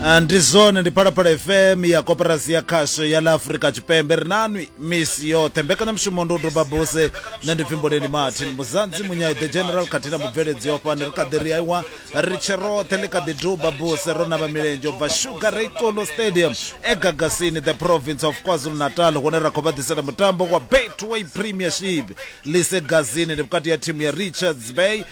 Ah, ndi zwone ndi phalaphala fm ya koperasi ya khasho ya la afurika tshipembe ri nanwi misi yoṱhe mbekanyamushumo ndi u doba buse nṋe ndi pfimboleni martin muzanzi munyai the general khathihi na mubveledzi yo fhani ri kha ḓi ri aiwa ri tshe roṱhe ḽi kha ḓi duba buse ro navha milenzhe u bva sugar reikolo stadium egagasini the province of kwazulu natal hune ra khou vha ḓisela mutambo wa betway premiership lise gazini ndi vhukati ya thimu ya richards bay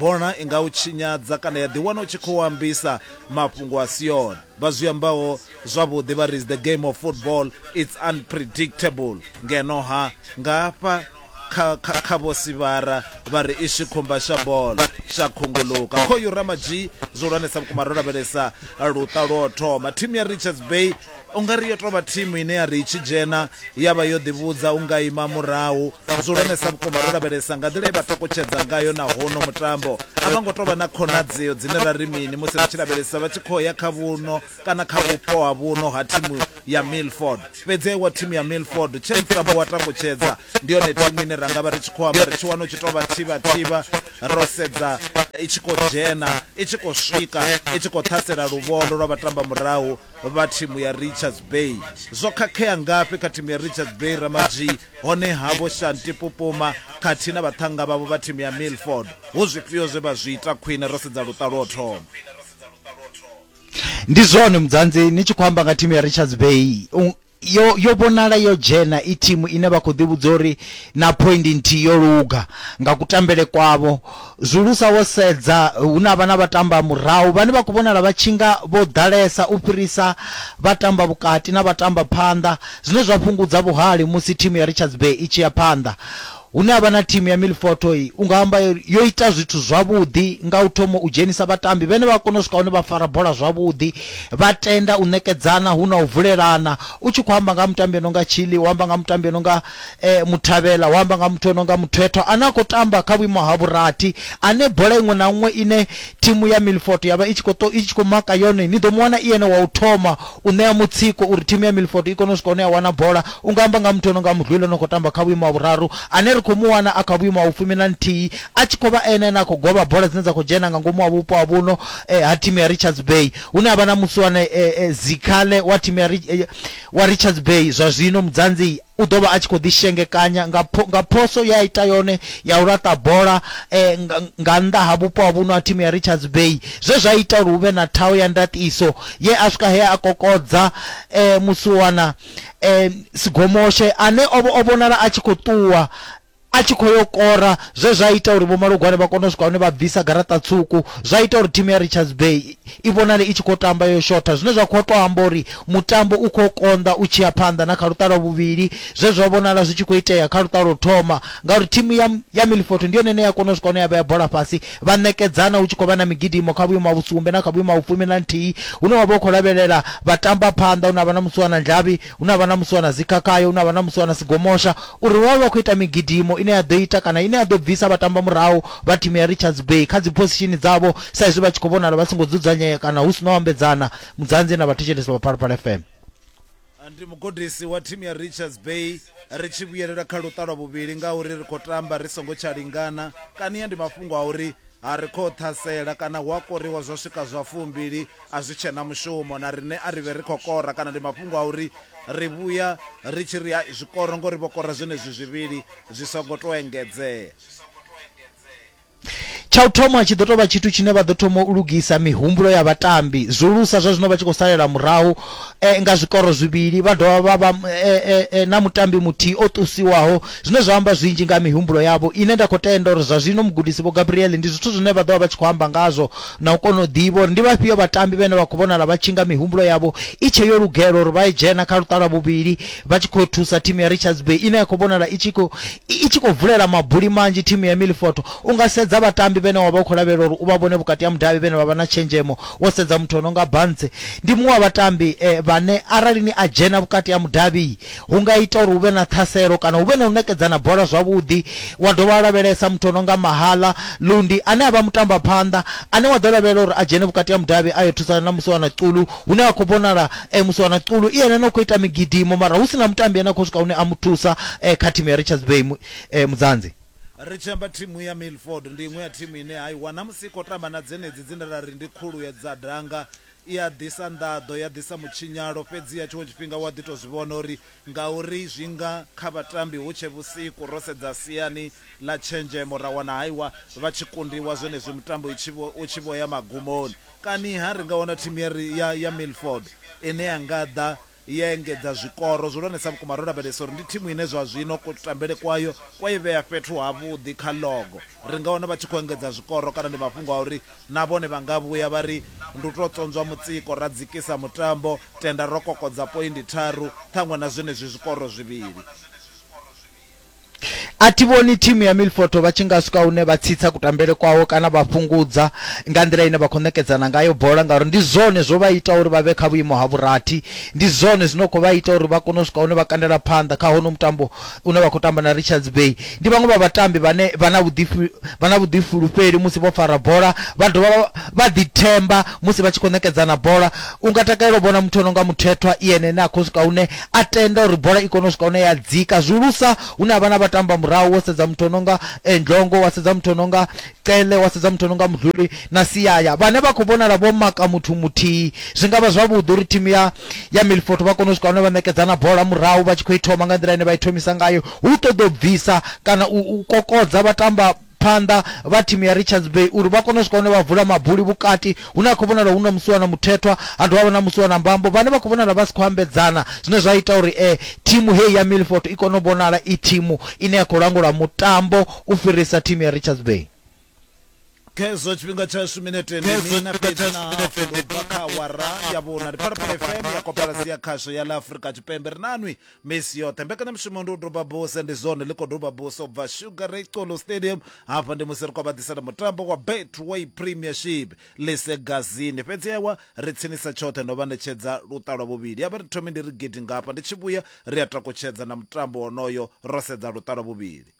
bona i nga u tshinyadza kana ya ḓiwana u tshi khou ambisa mafhungo a si one vha zwi ambaho zwavhuḓi vha ris the game of football its unpredictable ngeno ha nga hafha kha vho sivhara vha ri i tshi khumba sha bola sha khunguluka khoyu ramadzhi zwo lwanesa vhukuma ro lavhelesa luṱa lwo thoma thimu ya richards bay u nga ri yo tou vha thimu ine ya ri i tshi dzhena ya vha yo ḓivhudza u nga ima murahu zwo lonesa vhukuma ro lavhelesa nga nḓila ye vha ṱokotshedza ngayo na hono mutambo a vha ngo tou vha na khonadzeo dzine ra ri mini musi ri tshi lavhelesa vha tshi khou ya kha vhuno kana kha vhupo ha vhuno ha thimu ya milford fhedzi aiwa thimu ya milford tshe mutambo wa takutshedza ndi yone thimu ine ra nga vha ri tshi khou amba ri tshi wana u tshi tou vha thivhathivha ro sedza i tshi khou dzhena i tshi khou swika i tshi khou ṱhasela luvhondo lwa vhatamba murahu vha thimu ya Richards Bay. Zwo khakhea ngafhi kha thimu ya Richards Bay Ramadzwi hone havho Shanti Pupuma khathihi na vhaṱhanga vhavho vha thimu ya Milford hu zwifhio zwe vha zwi ita khwine ro sedza luṱa lwo thoma. Ndi zwone mudzanzi ni tshi khou amba nga thimu ya Richards Bay yo yo vhonala yo dzhena i thimu ine vha khou ḓivhudza uri na point nthihi yo luga nga kutambele kwavho zwulusa wo sedza hu na vhana vha tamba murahu vhane vha khou vhonala vha tshinga vho ḓalesa u fhirisa vha tamba vhukati na vha tamba phanḓa zwine zwa fhungudza vhuhali musi thimu ya Richards Bay i tshi ya phanḓa Hune ha vha na thimu ya Milford i, u nga amba uri yo ita zwithu zwavhuḓi nga u thoma u dzhenisa vhatambi vhane vha kona u swika hune vha fara bola zwavhuḓi, vha tenda u ṋekedzana hu na u vulelana. U tshi khou amba nga ha mutambi o no nga Chilli, wa amba nga ha mutambi o no nga Muthabela, wa amba nga ha muthu o no nga Muthethwa ane a khou tamba kha vhuimo ha vhurathi, ane bola iṅwe na iṅwe ine thimu ya Milford ya vha i tshi khou maka yone ni ḓo mu wana i ene wa u thoma u ṋea mutsiko uri thimu ya Milford i kone u swika hune ya wana bola. U nga amba nga ha muthu o no nga Mudlwile o no khou tamba kha vhuimo ha vhuraru ane ri khou mu wana a kha vhuimo ha vhufumi na nthihi a tshi khou vha ene ane a khou govha bola dzine dza khou dzhena nga ngomu ha vhupo ha vhuno ha thimu ya Richards Bay hune ha vha na musiwane Zikhale wa thimu ya wa Richards Bay zwa zwino mudzanzi u ḓo vha a tshi khou ḓishengekanya nga, nga phoso ye a ita yone ya u laṱa bola eh, nga, nga nnḓa ha vhupo ha vhuno ha thimu ya Richards Bay zwe zwa ita uri hu vhe na thaho ya ndaṱiso ye a swika he a kokodza eh, musiwana eh, Sigomoshe ane o, o vhonala a tshi khou ṱuwa a tshi khou yo kora zwe zwa ita uri vhomalugwane vha kone u swika hune vha bvisa garaṱa tswuku zwa ita uri thimu ya richards bay i vhonale i tshi khou tamba yo shotha zwine zwa khou tou amba uri mutambo u khou konḓa u tshi ya phanḓa na kha luṱalo vhuvhili zwe zwa vhonala zwi tshi khou itea kha luṱalo thoma ngauri thimu ya, ya milfoto ndi yone ine ya kona u swika hune ya vhea bola fhasi vha ṋekedzana hu tshi khou vha na migidimo kha vhuimo ha vhusumbe na kha vhuimo ha vhufumi na nthihi hune wa vha u khou lavhelela vha tamba phanḓa hune ha vha na musuwana ndlavhi Hu na vhanamusi vha na dzikhakhayo, hu na vhanamusi vha na sigomosha, uri vha vhe vha khou ita migidimo ine ya ḓo ita kana ine ya ḓo bvisa vhatambamurahu vha thimu ya Richards Bay kha dziphosishini dzavho sa izwi vha tshi khou vhonala vha songo dzudzanyea kana hu si na u ambedzana. Mudzanzi na vhathetshelesi vha Phalaphala FM. Ndi mugudisi wa thimu ya Richards Bay. Ri tshi vhuyelela kha luṱa lwa vhuvhili ngauri ri khou tamba ri songo tsha lingana. Kania ndi mafhungo a uri a ri khou ṱhasela kana hu a koriwa zwa swika zwa fumbili. A zwi tshe na mushumo na riṋe, a ri vhe ri khou kora kana ndi mafhungo a uri ri vhuya ri tshi ri hai zwi koro ngori vho kora zwenezwi zwivhili zwi songo tou engedzea. Tsha u thoma, tshi ḓo tou vha tshithu tshine vha ḓo thoma u lugisa mihumbulo ya vhatambi, zwihulusa zwa zwino vha tshi khou salela murahu nga zwikoro zwivhili vha dovha vha vha na mutambi muthihi o ṱusiwaho, zwine zwa amba zwinzhi nga ha mihumbulo yavho ine nda khou tenda uri zwa zwino mugudisi Vho Gabriel ndi zwithu zwine vha ḓo vha vha tshi khou amba ngazwo na u kona u ḓivha uri ndi vhafhio vhatambi vhane vha khou vhonala vha tshi nga mihumbulo yavho i tshe yo lugela uri vha dzhena kha luṱa lwa vhuvhili vha tshi khou thusa thimu ya Richards Bay ine ya khou vhonala i tshi khou i tshi khou vulela mabuli manzhi thimu ya Milifoto u nga sedza vhatambi vhane wa vha u khou lavhelela uri u vha vhone vhukati ha mudavhi vhane vha vha na tshenzhemo wo sedza muthu o no nga Bantse ndi muṅwe wa vhatambi eh, vhane arali ni a dzhena vhukati ha mudavhi hu nga ita uri hu vhe na ṱhaselo kana hu vhe na u ṋekedzana bola zwavhuḓi. Wa dovha wa lavhelesa muthu o no nga Mahala Lundi ane a vha mutambaphanḓa ane wa ḓo lavhelela uri a dzhene vhukati ha mudavhi a yo thusana na Musiwana Xulu hune ha khou vhonala Musiwana Xulu i ene ane a khou ita migidimo mara hu si na mutambi ane a khou swika hune a mu thusa kha thimu ya Richards Bay Mudzanzi. Ri tshi amba thimu ya Milford ndi iṅwe ya thimu ine ha i wana musi i khou tamba na dzenedzi dzine ra ri ndi khulu ya dza danga I a ḓisa nḓaḓo, ya ḓisa mutshinyalo, fhedziha tshiṅwe tshifhinga u a ḓi tou zwi vhona uri ngauri zwi nga kha vhatambi hu tshe vhusiku, ro sedza siani ḽa tshenzhemo ra wana haiwa vha tshi kundiwa zwenezwi mutambo i tshi vho, u tshi vho ya magumoni. Kani-ha ri nga wana thimu ya, ya, ya Milford ine ya nga ḓa ya engedza zwikoro zwihulwanesa vhukuma, ro lavhelesa uri ndi thimu ine zwa zwino kutambele kwayo kwa i vhea fhethu havhuḓi kha ḽogo. Ri nga wana vha tshi khou engedza zwikoro kana ndi mafhungo a uri na vhone vha nga vhuya vha ri ndi u tou tswonzwa mutsiko ra dzikisa mutambo, tenda ro kokodza poindi tharu ṱhaṅwe na zwenezwi zwikoro zwivhili. a thi vhoni thimu ya milfoto vha tshi nga swika hune vha tsitsa kutambele kwawo kana vha fhungudza nga nḓila ine vha khou ṋekedzana ngayo bola ngauri ndi zwone zwo vha ita uri vha vhe kha vhuimo ha vhurathi ndi zwone zwino khou vha ita uri vha kone u swika hune vha kandela phanḓa kha hono mutambo une vha khou tamba na richards bay ndi vhaṅwe vha vhatambi vhane vha na vhuḓifulufheli musi vho fara bola vha dovha vha ḓithemba musi vha tshi khou ṋekedzana bola u nga takalela u vhona muthu o no nga muthethwa i ene ene a khou swika hune a tenda uri bola i kone u swika hune ya dzika zwihulusa hune ha vha na vhatamba murahu wo sedza muthu no nga eh, ndlongo wa sedza muthu no nga cele wa sedza muthu no nga mudluli na siyaya vhane vha khou vhonala vho maka muthu muthihi zwi nga vha zwavhuḓi uri thimu ya ya milfoto vha kone u swika hune vha ṋekedzana bola murahu vha tshi khou i thoma nga nḓila ine vha i thomisa ngayo hu ṱoḓa u bvisa kana u kokodza vhatamba phanḓa vha thimu ya Richards Bay uri vha kone u swika hune vha vula mabuli vhukati hune ha khou vhonala hu na musiwa na muthethwa ha dovha vha na musiwa na mbambo vhane vha khou vhonala vha si khou ambedzana zwine zwa ita uri e thimu heyi ya Milford i kone u vhonala i thimu ine ya khou langula mutambo u fhirisa thimu ya Richards Bay. Khezwo tshifhinga tshashu minete ndi mina fhedzi na hafu ndo bva kha awara ya vhuna ndi phalaphala fm ya kopalasi ya khasho ya ḽa afurika tshipembe ri nanwi misi yoṱhe mbekanyamushumo ndi u doba buse ndi zwone ḽi khou doba buse u bva sugar ray colo stadium hafha ndi musi ri khou vha ḓisela mutambo wa betway premiership lisegazini fhedzi ewa ri tsinisa tshoṱhe ndo vha ṋetshedza luṱa lwa vhuvhili ya vha ri thomi ndi ri gidi ngafha ndi tshi vhuya ri a takutshedza na mutambo wonoyo ro sedza luṱa lwa vhuvhili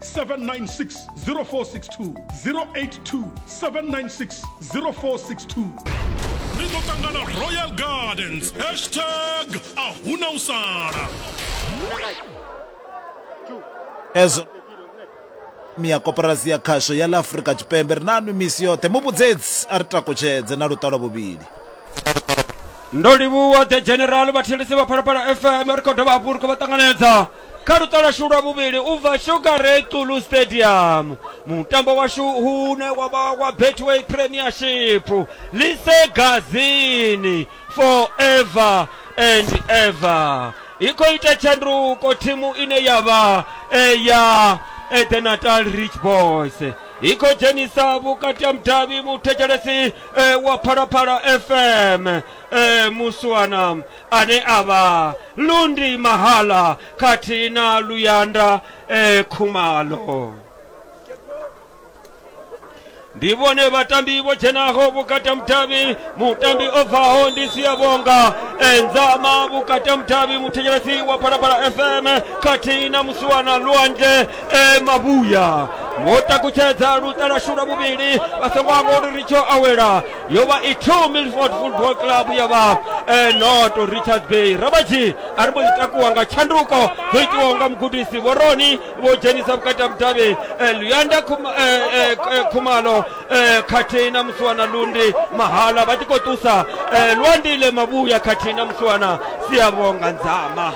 796 0462 082 796 0462 ri ḓo ṱangana royal gardens hashtag a huna u sala ezwo mia koporasi ya khasho ya ḽa afurika tshipembe ri nanu misi yoṱhe muvhudzedzi a ri takutshedze na luṱalo vhuvhili ndo livhuwa the general vhathelisi vha phalaphala fm ri khou dovha hafhu ri khou vha ṱanganedza kha luṱa lwashu lwa vhuvhili u bva sugarey tulu stadium mutambo washu hune wa vha wa betway premiership lise gazini forever and ever i khou ita tshanduko thimu ine ya vha eh, ya eh, the natal rich boys i khou dzhenisa vhukati ha mudavhi muthetshelesi eh, wa phalaphala fm eh, muswana ane a vha Lundi Mahala khathihi na Luyanda eh, Khumalo. ndi vhone vhatambi vho dzhenaho vhukata mutavhi mutambi o bvaho ndi siyavhonga enzama vhukata mutavhi muthetshelesi wa phalaphala fm khathihi na musiwana lwanzhe e mavhuya vho takutshedza luṱalashu lwa vhuvhili vha songo amba uri ri tsho awela yo vha i two milford football club ya vha eh, noto richard bay rabaji a ri mbo ḓi takuwa nga tshanduko dzo itiwaho nga mugudisi vhoroni vho dzhenisa vhukati ha vhudavhi eh, luyanda Khuma- eh, eh, k- eh, khumalo eh, khathihi na musiwana lundi mahala vha tshi khou ṱusa eh, lwandile mavhuya khathihi na musiwana siyavhonga nzama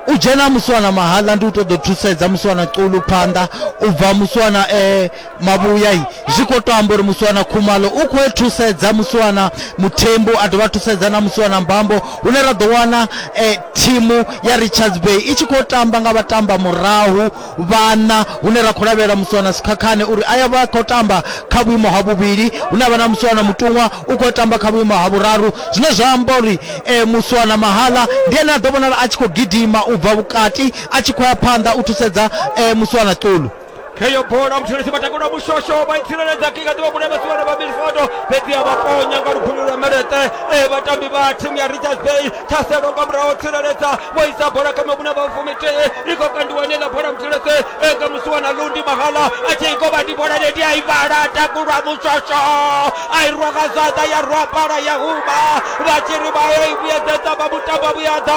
u dzhena musiwana mahala ndi u ṱoḓa u thusedza musiwana xulu phanḓa u bva musiwana eh, mavhuya zwi khou to amba uri musiwana khumalo u khou e thusedza musiwana muthembu a dovha thusedza na musiwana mbambo hune ra ḓo wana eh, thimu ya richards bay i tshi khou tamba nga vhatamba murahu vhana hune ra khou lavhelela musiwana sikhakhane uri a ya vha khou tamba kha vhuimo ha vhuvhili hune avha na musiwana mutuṅwa u khou tamba kha vhuimo ha vhuraru zwine zwa amba uri eh, musiwana mahala ndi ene a ḓo vhonala a tshi khou gidima u bva vhukati a tshi khou ya phanḓa u thusedza eh, musiwana ṱulu heyo bola mushonesi matakula mushosho vaitsireledza kika tiva kune vasiwana va minfoto fhedzi ya vaponya nga lugulu lwa melete e vatambi va thimu ya richards bay thaselo nga muraho tsireledza vho isa bola kha mavhune va fumitee i khou kandiwa nela bola mushonesi eka musiwana lundi mahala a tshi ikovha ndi bola leti a i vhala takulwa mushosho a i rwa nga zwanḓa ya rwa pala ya huma vha tshi ri vha yo i vhuyedzedza vha mutambo vhuyadza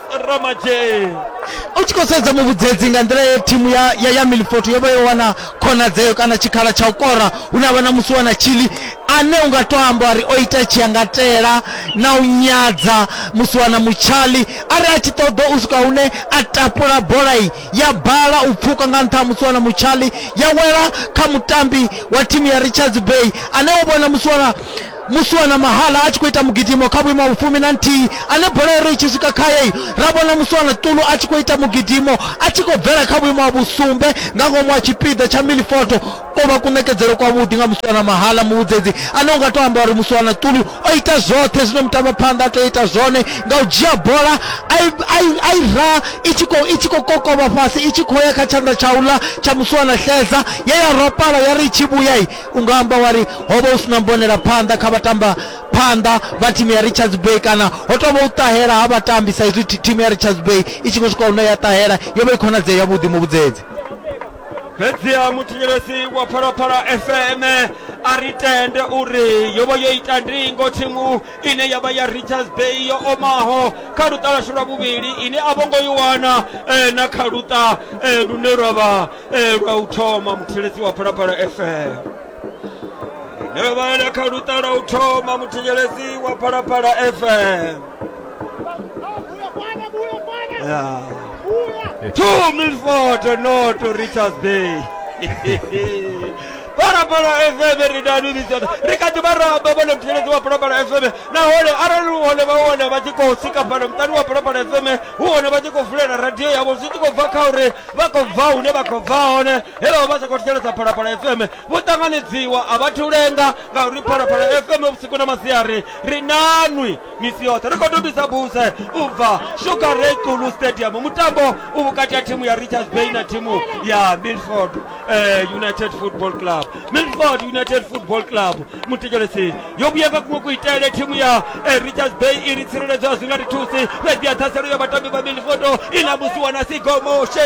ramadzhee u tshi khou sedza muvhudzedzi nga nḓila ye thimu ya, ya, ya milfort yo vha yo wana khonadzeo kana tshikhala tsha u kora hu na vha na musi wana tshili ane u nga to amba uri o ita tshiyangatela na u nyadza musi wana mutshali a ri a tshi ṱoḓa u swika hune a tapula bola iyi ya bala u pfuka nga nṱha ha musi wana mutshali ya wela kha mutambi wa thimu ya richards bay ane wo vhona musi wana muswana mahala a tshi khou ita mugidimo kha vhuimo ha vhufumi na nthihi ane bola iri i tshi swika khaye ra vhona muswana ṱulu a tshi khou ita mugidimo a tshi khou bvela kha vhuimo ha vhusumbe nga ngomu ha tshipiḓa tsha milifoto ko vha kuṋekedzelo kwavhuḓi nga muswana mahala muvhudzedzi ane u nga tou amba uri muswana ṱulu o ita zwoṱhe zwine mutambaphanḓa a tea u ita zwone nga u dzhia bola a i ra i tshi khou i tshi khou kokovha fhasi i tshi khou ya kha tshanḓa tsha uḽa tsha muswana xedza ye ya ropala ya ri i tshi vhuya U nga amba wa ri, Ho vha hu si na mbonelaphanḓa kha vhatambaphanḓa vha thimu ya Richards Bay kana ho tou vha u ṱahela ha vhatambi sa izwi thimu ya Richards Bay i tshi khou swika hune ya ṱahela. Yo vha i khonadzeo yavhuḓi muvhudzedzi. Fhedziha muthetshelesi wa Phalaphala FM a ri tende uri yo vha yo ita ndingo thimu ine ya vha ya Richards Bay yo omaho kha luṱa lwashu lwa vhuvhili ine a vho ngo i wana eh, na kha luṱa eh, lune lwa vha Ee, lwa u thoma muthetshelesi wa phalaphala fm ine yo vhalela kha luṱa lwa u thoma muthetshelesi wa phalaphala fm Ya. two milford no to richards bay phalaphala fm ri danilisa ri kha ḓi vha ramba vhone muthetshelesi wa phalaphala fm nahone arali hu hone vha wana vha tshi khou sika fhano muṱani wa phalaphala fm hu hone vha tshi khou vulela radio yavho zwi tshi khou bva kha uri vha khou bva hune vha khou bva hone helo vha sa khou thetshelesa phalaphala fm vho ṱanganedziwa a vha thu lenga ngauri phalaphala fm vhusiku na masiari ri nanwi misi yoṱhe ri khou tobisa buse u bva sugar ray kulu stadium mutambo u vhukati ha thimu ya richards bay na thimu ya milford eh, united football club milford united football club muthetshelesi yo vhuya nga kuṅwe kuitele thimu ya eh, richards bay i ri tsireledzwa zwi nga ri thusi fhedzi ya ṱhaselo ya vhatambi vha milifoto i ḽa musi wana sigomoshe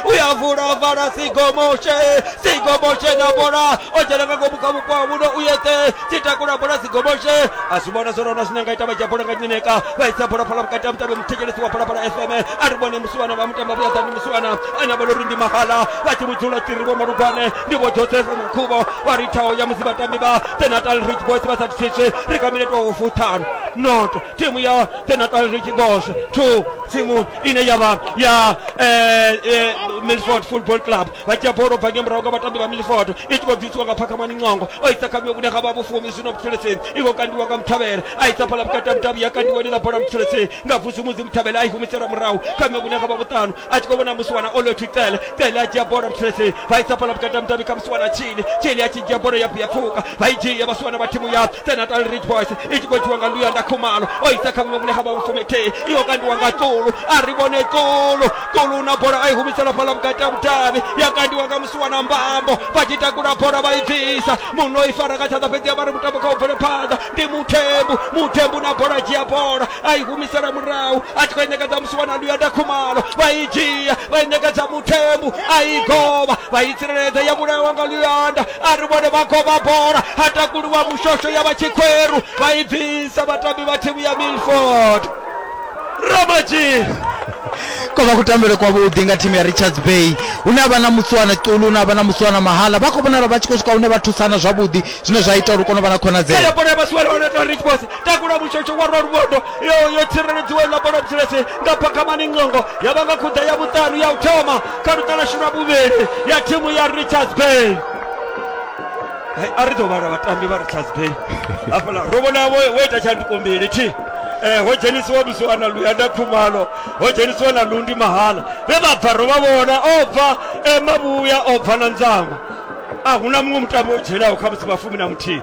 u ya vula vala sigomoshe sigomoshe na bola o dzhena nga ngomu kha vhupo ha muno u yeṱe tshi takula bola sigomoshe a zwi vhona zwone ona zwine nga ita vha dzhia bola nga nyineka vha isa bola phala vhukati ha mutambi muthetshelesi wa phalaphala fm a ri vhone musiwana vha mutambi vhuyaḓani musiwana ane a vha uri ndi mahala vha tshi vhudzula tiri vho malugwane ndi vho joseph mukhubo vha ri tshao ya musi vhatambi vha the natal rich boys vha sa thithiswe ri kha minete wa vhufuṱhanu not thimu ya the natal rich boys two thimu ine ya vha ya eh, eh, milford football club vha dzhia bolo bva nge murahu nga vhatambi vha milford i tshi khou bvisiwa nga phakhamani ncongo o isa kha miwe vhune ha vha vhufumi zwino mutheleseni i khou kandiwa nga muthavhela a isa phala vhukati ha mutavhi ya kandiwa ni ḽa bola mutheleseni nga vhusumuzi muthavhela a i humisela murahu kha miwe vhune ha vha vhuṱanu a tshi khou vhona musiwana o lothu cele cele a dzhia bola mutreseni vha isa bola vhukati ha mutambi kha musiwana tshini tshini a tshi dzhia bola ya ya pfuka vha i dzhia vhasiwana vha thimu ya senatal rich boys i tshi khou dzhiwa nga luyanda khumalo o isa kha muṅwe mune ha vha mufumethei iyo kandiwa nga tsulu a ri vhone tsulu tsulu na bola a i humisela fhala vhukati ha mutavhi ya kandiwa nga musiwana mbambo vha tshi takula bola vha i bvisa muno i fara nga tshanḓa fhedzi ya vha ri mutambo kha u bvele phanḓa ndi muthembu muthembu na bola dzhia bola a i humisela murahu a tshi khou i ṋekedza musi wana luya da khumalo vha i dzhia vha i ṋekedza muthembu a i govha vha i tsireledza ya vhulawa nga luyanda a ri vhone vha govha bola ha takuluwa mushosho ya vha tshikhweru vha i bvisa vhatambi vha thimu ya milford ramajii ko vha kutambele kwavhuḓi nga thimu ya richards bay hune a vha na mutswana ṱulu hune a vha na mutswana mahala vha khou vhonala vha tshi khou swika hune vha thusana zwavhuḓi zwine zwa ita uri u kone u vha na khonadzeo Kaya bola ya vhasiwana wana tori Rich Boss takula mushotsho wa rwa luvhondo yo yo tsireledziwa iḽa bola dzulese nga phakamani ngongo ya vha nga khuḓa ya vhuṱanu ya u thoma kha luṱalashu lwa vhuvhili ya thimu ya richards bay Hai, a ri ḓo vhala vhatambi vha richards bay hafhaḽa ro vhona wo wo ita tshanduko mbili thi Eh, ho dzhenisiwa lusiwana luyanda khumalo ho dzhenisiwa na lundi mahala vhe vha bva ro vha vhona o bva eh, mavhuya o bva na nzama a huna muṅwe mutambo o dzhenaho kha musi vhafumi na muthihi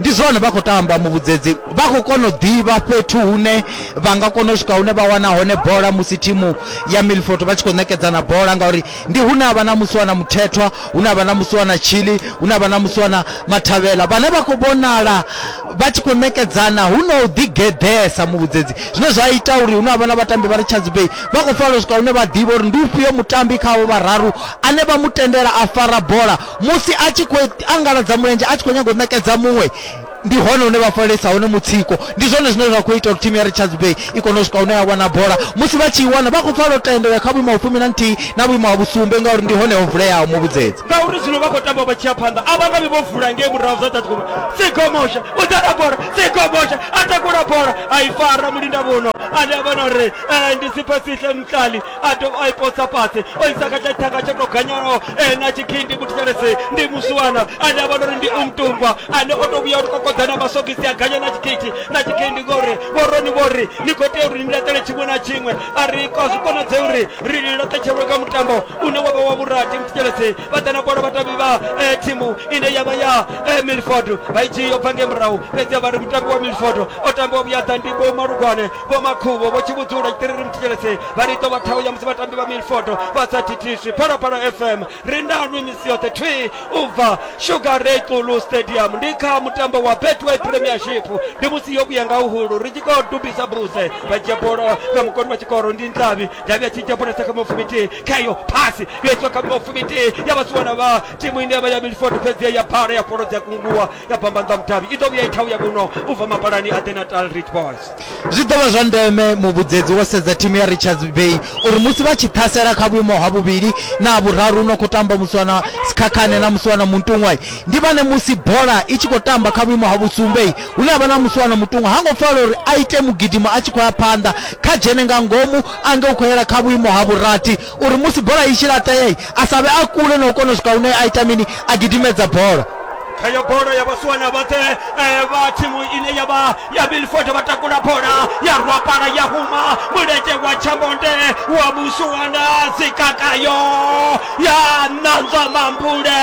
ndi zwone vha khou tamba muvhudzedzi vha khou kona u ḓivha fhethu hune vha nga kona u swika hune vha wana hone bola musi thimu ya milford vha tshi khou ṋekedzana bola ngauri ndi hune a vha na musi wana muthethwa hune a vha na musi wana chili hune a vha na musi wana mathavhela vhane vha khou vhonala vha tshi khou ṋekedzana hu na u ḓigeḓesa muvhudzedzi zwine zwa ita uri hune a vha na vhatambi vha ri chadzibei vha khou fanela u swika hune vha ḓivha uri ndi ufhio mutambi khavho vhararu ane vha mu tendela a fara bola Musi a tshi khou angaladza mulenzhe a tshi khou nyaga u ṋekedza muṅwe, ndi hone hune vha falalisa hone mutsiko. Ndi zwone zwine zwa khou ita uri thimu ya Richards Bay i kone u swika hune ya wana bola. Musi vha tshi i wana, vha khou pfa lotendo u ya kha vhuimo ha vhufumi na nthihi na vhuimo ha vhusumbe ngauri ndi hone ho vuleaho muvhudzedzi. Ngauri zwino vha khou tamba vha tshi ya phanḓa, a vha nga vhi vho vula ngei murahu zwa Tatigomosha. Sigomosha u ḓa na bola, Sigomosha a takula bola a i fara mulindavhuno ane a vha na uri ndi Siphesihle Mtlali. a dovha a i posa fhasi o isa kha tsha thanga tsho to ganyanaho ene a tshi khi ndi muthetshelesi ndi muswana ane a vhona uri ndi umtungwa ane o to vhuya u kokodza na masogisi a ganya na tshikhithi na tshikhindi ngori vhoroni vhori ni khou tea uri ni laṱele tshiṅwe na tshiṅwe a ri kwa zwi konadze uri ri li laṱetshelwe kha mutambo une wa vha wa vhurati muthetshelesi vha ḓa na bola vhatambi vha eh, thimu ine ya vha ya eh, milford vha i tshi yo bva nge murahu fhedzi vha ri mutambi wa milford o tambiwa vhuyaḓa ndi bo malugwane vho makhubo vho tshivhudzula tshiṱiriri muthidzhelese vha ri ḓo vha ṱhaho ya musi vhatambi vha milfoto vha sa thithiswi phalaphala fm ri nanwi misi yoṱhe thwi u bva sugar ray xulu stadium ndi kha mutambo wa betway premiership ndi musi yo vhuya nga uhulu ri tshi khou dubisa buse vha dzhia bola nga mukoni wa tshikoro ndi ndavhi ndavhi a tshi dzhia bola sa kha mufumitihi khayo phasi yo itiwa kha mufumitihi ya vhasiwa na vha timu ine ya vha ya milfoto fhedzi ya bhala ya fholo dzi a kunguwa ya bamba nḓa mudavhi i ḓo vhuya i ṱhaho ya muno u bva mapalani a the natal rich boys Zwi ḓo vha zwa ndeme muvhudzedzi wo sedza thimu ya Richards Bay uri musi vha tshi ṱhasela kha vhuimo ha vhuvhili na ha vhuraru no khou tamba musi wana Sikhakhane na musi wana Muntuṅwai ndi vhane musi bola i tshi khou tamba kha vhuimo ha vhusumbei hune ha vha na musi wana Mutuṅwa ha ngo fanela uri a ite mugidimo a tshi khou ya phanḓa kha dzhene nga ngomu ange u khou yela kha vhuimo ha vhurathi uri musi bola i tshi laṱeei a sa vhe a kule na u kona u swika hune a ita mini a gidimedza bola heyo bola ya vhasiwana vhoṱhe eh, vha thimu ine ya vha ya bilford vha takula bola ya rwapala ya huma mulenzhe wa tshamonde wa vhusiwana dzikakayo ya ṋanzwa mambule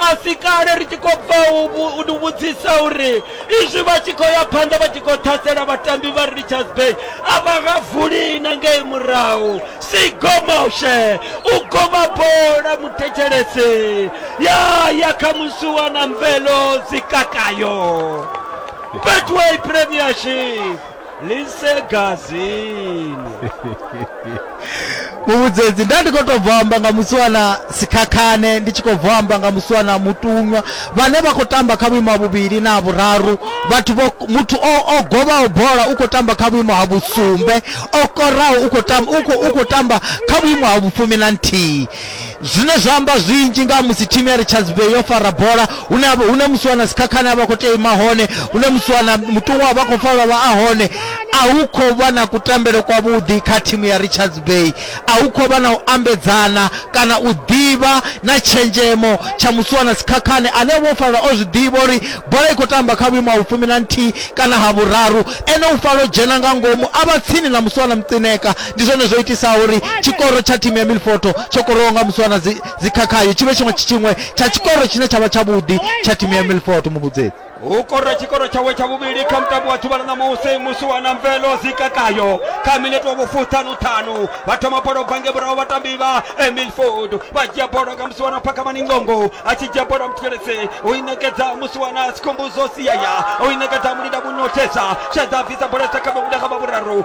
A si kale ri tshi khou bva u vhu- u ni vhudzisa uri izwi vha tshi khou ya phanḓa vha tshi khou ṱhasela vhatambi vha Richards Bay a vha nga vuli na ngei murahu sigomoshe u goma bola muthetshelesi ya ya kha musuwa na mvelo dzikakayo Betway Premiership lisegazini muvhudzedzi nda ndi khou tou bva amba nga musiwana sikhakhane ndi tshi khou bva amba nga musiwana mutunywa vhane vha khou tamba kha vhuimo ha vhuvhili na ha vhuraru vhathu vho muthu o o govhaho bola u khou tamba kha vhuimo ha vhusumbe o koraho u khou tamba u khou u khou tamba kha vhuimo ha vhufumi na nthihi Zwine zwa amba zwinzhi nga ha musi thimu ya Richards Bay yo fara bola, hune ha vha- hune musiwana Sikhakhane a vha khou tea u ima hone, hune musiwana Muṱuṅwa a vha khou fara vha a hone. A hu khou vha na kutambele kwavhuḓi kha thimu ya Richards Bay, a hu khou vha na u ambedzana kana u ḓivha na tshenzhemo tsha musiwana Sikhakhane ane vho fara o zwi ḓivha uri bola i khou tamba kha vhuimo ha vhufumi na nthihi kana ha vhuraru, ene u fara o dzhena nga ngomu a vha tsini na musiwana Mcineka. Ndi zwone zwo itisaho uri tshikoro tsha thimu ya Milfoto tsho korowaho nga musi wana dzikhakhayo tshi vhe tshiṅwe tshiṅwe tsha tshikoro tshine tsha vha tshavhuḓi tsha thimu ya Milfoto muvhudzedzi. U kora tshikoro tshawe tsha vhuvhili kha mutambo wa ḓuvha ḽa ṋamusi musi wana mvelo dzikhakhayo kha minete wa vhufuṱhanu ṱhanu vha thoma bola ubva nge murahu vhatambi vha Milford vha dzhia bola nga musi wana Phakamani Ngongo a tshi dzhia bola mutheletse u i ṋekedza musi wana Sikhumbuzo Siaya u i ṋekedza Mulinda Vhunothesa Shedza bvisa bola sa kha vhamuda kha vha vhuraru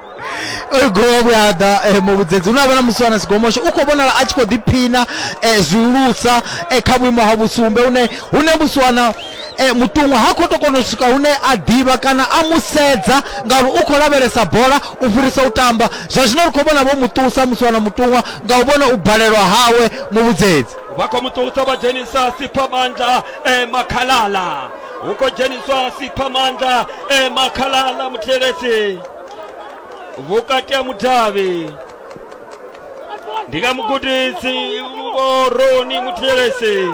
oyo gowa vhuyaḓa um eh, muvhudzedzi hu no avha na muswana sigomosho u khou vhonala a tshi khou ḓiphina um zwihulusa um kha vhuimo ha vhusumbe hune hune muswana um muṱuṅwa ha khou to kona u swika hune a ḓivha kana a mu sedza ngauri u khou lavhelesa bola u fhirisa u tamba zwa zwino ri khou vhona vho muṱusa muswana muṱuṅwa nga u vhona u balelwa hawe muvhudzedzi vha khou muṱusa vha dzhenisa siphamandla um makhalala hu khou dzheniswa siphamandla e makhalala muthelesi vhukati ha mudavhi ndi nga mugudisi vhoroni muthelesi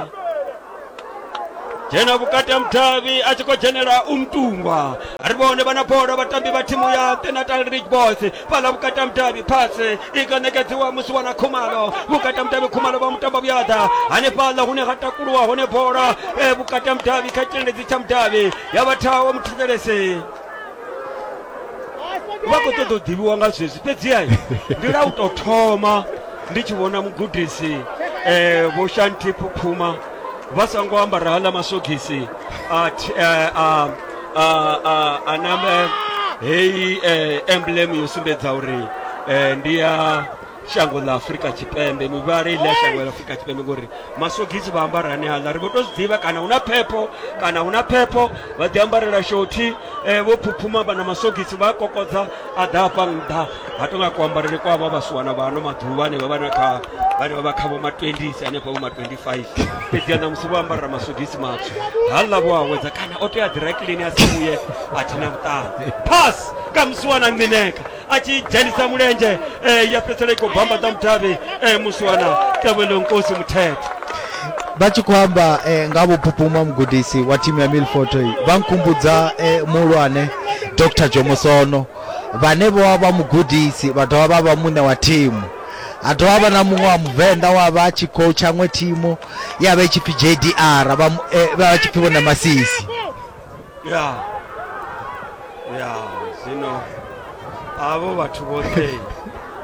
dzhena vhukati ha mudavhi a tshi khou dzhenela umtungwa ri vhone vha na bola vhatambi vha thimu ya tenatal ridge boys fhala vhukati mudavhi phase i nga ṋekedziwa musi wana khumalo vhukati mudavhi khumalo vha mutamba vhuyada hanefhaḽa hune ha takuluwa hone bola eh, vhukati mudavhi kha tshitendedzi tsha mudavhi ya vhathaho muthetshelesi vha khou ṱoḓa u ḓivhiwa nga zwezwi fhedziha ndi la u tou thoma ndi tshi vhona mugudisi um vho shanti phuphuma vha sa ngo ambara haḽa masogisi a eh, a a a a nambe heyi eh, emblem yo sumbedza uri eh, ndi ya shango ḽa afurika tshipembe mivhala ile ya shango ḽa afurika tshipembe ngori masogisi vha ambara ane aḽa ri vho to zwi ḓivha kana hu na phepho kana hu na phepho vha ḓi ambarela shothi eh, vho phuphuma vha na masogisi vha a kokodza a ḓa hafha nṱha ha tou nga kuambarele kwa vha vhasuwana vha ano maḓuvha ane vha vha na kha vhane vha vha kha vho ma 20 hanefha vho ma 25 fhedziha ṋamusi vho ambarela masogisi matswu ha ḽa vho awedza kana o tea direkilini a si vhuye a thi na vhuṱanzi pass ka musiwana ngineka a tshi dzhenisa mulenzhe um ya fhedzisela i khou bambadza mudavhi um musiwana tevhelonkosi muthethe vha tshi khou amba eh, nga vhupupuma mugudisi wa thimu ya milfoto vha nkhumbudza eh, muhulwane dr jomosono vhane vho vha vha mugudisi vha dovha vha vha muṋe wa thimu ha dovha vha na muṅwe wa muvenḓa wa vha tshi khou tshaṅwe thimu ya vha i tshi pfi jdr vha mu- eh, vha vha tshi pfi vhone masisi ya ya zwino avho vhathu vhoṱhe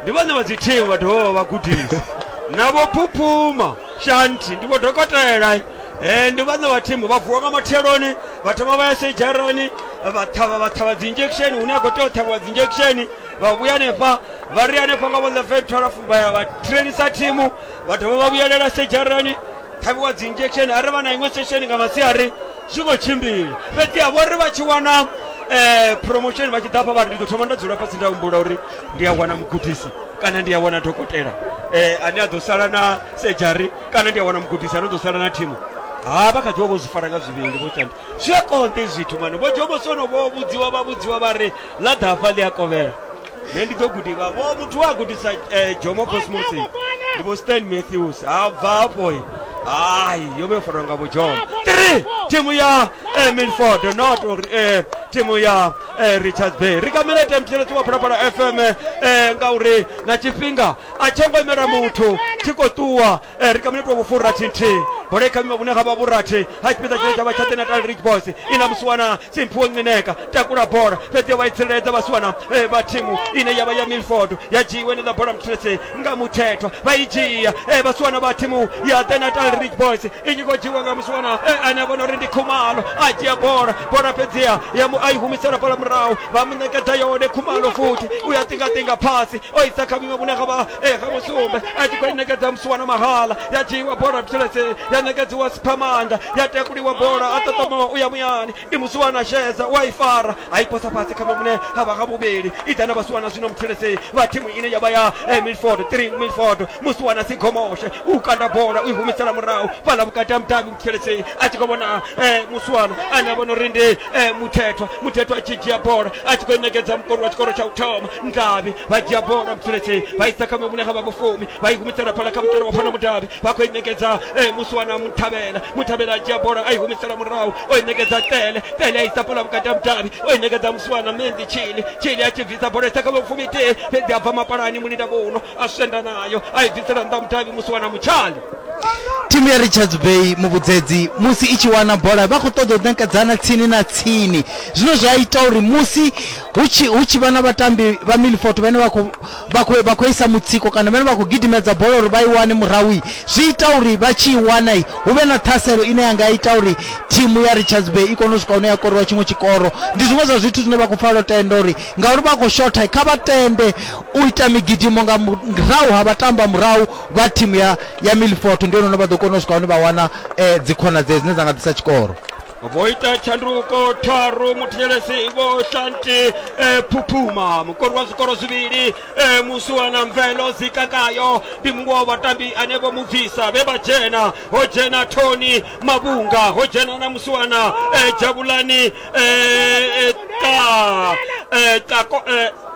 Ndi vhone vha dzi team vha dovha vha vha gudisi na vho phuphuma shanthi ndi vho dokotela eh ndi vhone vha team vha vuwa nga matheloni vha thoma vha ya sejarani vha ṱhavha vha ṱhavha dzi injection hune a khou tea u ṱhavhiwa dzi injection vha vhuya hanefha vha ri hanefha nga vhone fhe 12 vha ya vha trainisa thimu vha dovha vha vhuyelela sejarani ṱhavhiwa dzi injection a ri vha na iṅwe sesheni nga masiari zwi khou tshimbila fhedziha vho ri vha tshi wana um promotion vha tshi ḓa hafha vha ri ndi ḓo thoma nda dzula fhasi nda humbula uri ndi a wana mugudisi kana ndi a wana dokotela um ane a ḓo sala na sejari kana ndi a wana mugudisi ane ḓo sala na thimu ha vha kha ḓi vha vho zwi fara nga zwivhili vho tshanda zwi a konḓe zwithu mane vho dzhomosono vho vhudziwa vha vhudziwa vha ri ḽa ḓafha ḽi a kovhela ne ndi ḓo gudiwa vho muthu we a gudisa eh, jomo cosmosi ndi vho stan matthews ha bva hafho eh. hayi yo vha yo farwa nga vhojomo three thimu ya eh, milford not uri eh, thimu ya eh, richards bay ri kamile temthelesi wa phalaphala fm eh, ngauri na tshifhinga a tsho ngo imela muthu tshi khou ṱuwa Ee, ri kha minitwa vhufurathi nthihi bola i kha vhima vhune ha vha vhurathi ha tshipiḓa tshine tsha vha tsha the natal ridge boys i na musiwana simphiwo ncineka takula bola fhedzi vha i tsireledza vhasiwana eh, vha thimu ine ya vha ya milford ya dzhiiwe ni ḽa bola muthulese nga muthethwa vha i dzhia eh, vhasiwana vha thimu ya the natal ridge boys i tshi khou dzhiiwa nga musiwana eh, ane a vhona uri ndi khumalo a dzhia bola bola fhedziha ya mu a i humisela bola murahu vha mu ṋekedza yone khumalo futhi u ya ṱingaṱinga phasi o isa kha vhuṅwe vhune havha e eh, ha musumbe a tshi khou i ṋekedza musuwana mahala ya dzhiiwa bola vhutshileseni ya ṋekedziwa siphamanga ya takuliwa bola a ṱoṱomowa u ya muyani i musuwana shedza u a i fara a i posa fhasi kha vhune havha ha vhuvhili i ḓa na vhasuwana zwino mutshileseni vha thimu ine ya vha ya eh, milford three milford musuwana sigomoshe u kanda bola u i humisela murahu fhala vhukati ha mudavhi tsheletsei a tshi khou vhona eh, muswana ane a vhona uri ndi eh, muthethwa muthethwa a tshi dzhia bola a tshi khou ṋekedza mukoni wa tshikoro tsha u thoma ndavhi vha dzhia bola tsheletsei vha isa kha mevhune ha vha vhofumi vha i humisela phala kha mutalo wa fana mudavhi vha khou i ṋekedza eh, muswana muthavhela muthavhela a dzhia bola a i humisela murahu o i ṋekedza tele tele a isa phala vhukati ha mudavhi o i ṋekedza muswana menzi tshili tshili a tshi bvisa bola isa kha vhofumi tee fhedzi a bva mapalani mulindavho uno a swenda nayo a i bvisela nnḓa mudavhi muswana mutshali thimu ya richards bay muvhudzedzi musi i tshi wana bola vha khou ṱoḓa u ṋekedzana tsini na tsini zwine zwa ita uri musi hu tshi hu tshi vha na vhatambi vha milfort vhane vha khou- vha khou- vha khou isa mutsiko kana vhane vha khou gidimedza bola uri vha i wane murahui zwi ita uri vha tshi i wana i, hu vhe na ṱhaselo ine ya nga ita uri thimu ya richards bay i kone u swika hune ya koriwa tshiṅwe tshikoro ndi zwiṅwe zwa zwithu zwine vha khou fanela u tenda uri ngauri vha khou shotha kha vha tende u ita migidimo nga murahu ha vhatamba murahu vha thimu ya ya milfort ndi hone vha ḓo kona u swika hone vha wana um dzikhonadzeo dzine dza nga ḓisa tshikoro vho ita tshanduko tharu muthetshelesi vho shanti eh, phuphuma mukori wa zwikoro zwivhili eh, musuwana mvelo zikakayo ndi muṅwe wa vhatambi ane vho mu bvisa vhe vha dzhena ho dzhena thoni mavhunga ho dzhena na musuwana eh, dzhavhulani eh, eh, ta, eh, ta, eh,